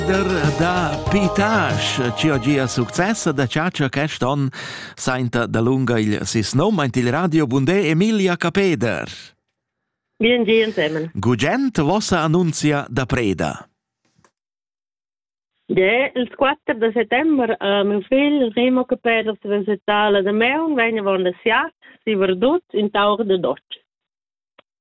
Der da Pitasch, ci ho gia success da chatscha quest on, sainta dalunga il sis nom aint il radio Bundé Emilia Capeder. Bien gi insemen. Gugent vossa annunzia da preda. Ja, il 4 de settembre a mio figl Remo Capeder si visitala de Meun vegna von der Siat, si verdut in taur de Dotsch.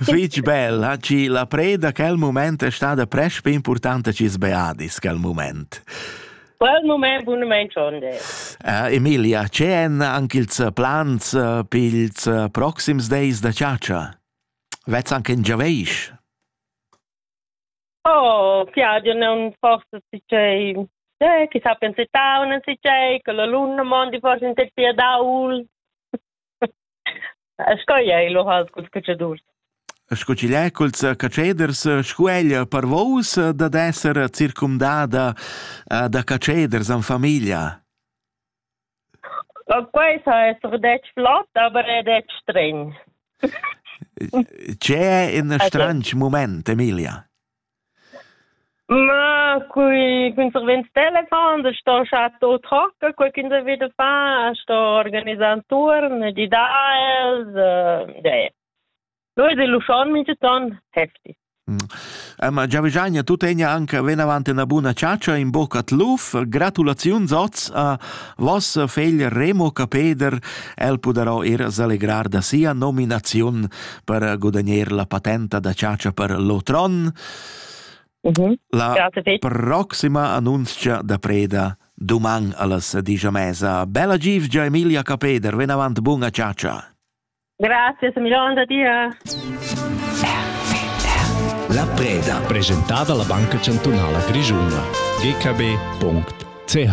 Fich bel, ha chi la preda quel moment è stada presch più importante chi sbeadis quel moment. Quel moment bunament sonde. Uh, Emilia, c'è en anche ils plans uh, per ils uh, proxims days da ciaccia? Vets anche in Giaveish? Oh, piace non forse si c'è Eh, chissà pensa tau, non si c'è, che l'alunno mondi forse in terapia da UL. Sco ei lu has culs cacciadurs? Sco ch'igl è culs catscheders, sco ella per vos dad esser circumdada da catscheders en famiglia? Quei sa esser detg flot, aber è detg stregn. C'è in stranch moment, Emilia? Ma cun cun servents telefon da sto scha to trocca quai ch'ins ha vi da far, sto organisar ün turn, di da els, e no es l'uschon minchaton hefti. Ma Giavigagna tu tegna anche venavant üna buna chatscha, in bocca d'luf. Gratulaziuns oz a voss fegl Remo Capeder. El pudarà ir s'allegrar da sia nominaziun per guadagnar la patenta da chatscha per l'otron. Mm -hmm. La proxima annunzia da preda doman allas digia mesa. Bella givgia Emilia Capeder, ven avant bunga chatscha. Grazie Emiliano, da dir. La preda presentata alla Banca Cantunala Grigiuna. gkb.ch